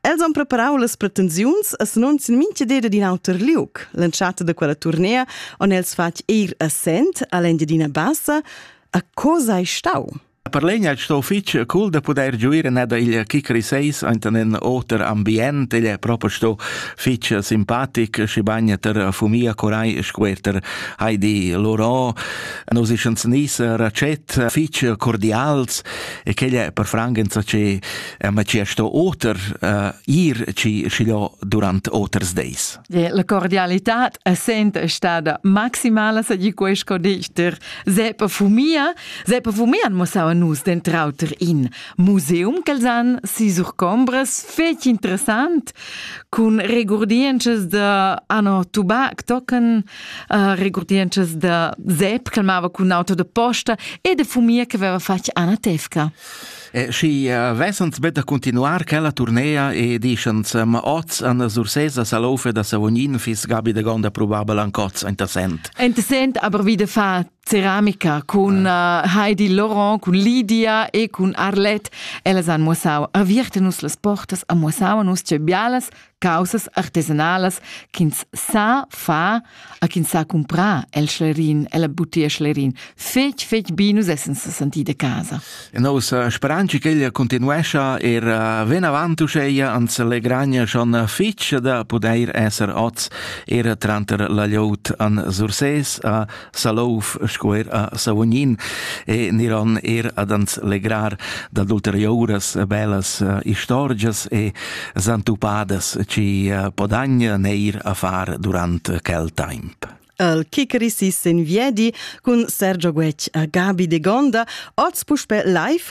Els han preparau las pretensiuns e s'annunzien mintgadeda d'in auter liug. L'entschatta da quella turnea han els fatg eir assent all'Engiadina Bassa. A co sei stau? Per legna è stato fitg cool da poter giuire ned il Kikri 6 enten in oter ambient, igl è proprio stato fitg simpatic, și bagna ter fumia corai squerter Heidi Loró, nos ischens nis racet fitg cordials e quegl è per frangenza ce Eh, ma ci è sto oter uh, ir ci schiglio durant oters days. La cordialità è sempre stata maximala, se di questo dichter. Sepa fumia, sepa fumia han mossau a nus den trauter in museum ch'els han si surcombras fetg interessant con regurdiences da ano tubac tocken, uh, regurdiences da Sepp che mava con auto de posta e de fumia che aveva fatg Anna Tefka. E schi uh, vessans bet da continuar quella turnea e dischans, ma oz an Sursesa Salofe da Savognin fis Gabi de Gonda probabel ancoz interessant. Interessant, aber wie de fa ceramica cun ah. uh, Heidi Laurent, cun Lydia e cun Arlette. Ellas han muossau avierte nus las portas, a muossau nus ce bialas caussas artesanalas ch'ins sa far a ch'ins sa cumprar el schlerin, el butia schlerin. Fetg, fetg bi nus essen sa senti de casa. E nos eh, speranza che ella continuescia er eh, ven avant uscheia ans legragna schon fitg da poder esser oz er tranter la liot an Surses a Salouf sco er a Savognin e niron er ad ans legrar dad ulteriouras bellas eh, istorgias e zantupadas ci eh, podagna neir a far durant quel temp. El Kikerisis in viedi cun Sergio Guec a Gabi de Gonda, oz puspe live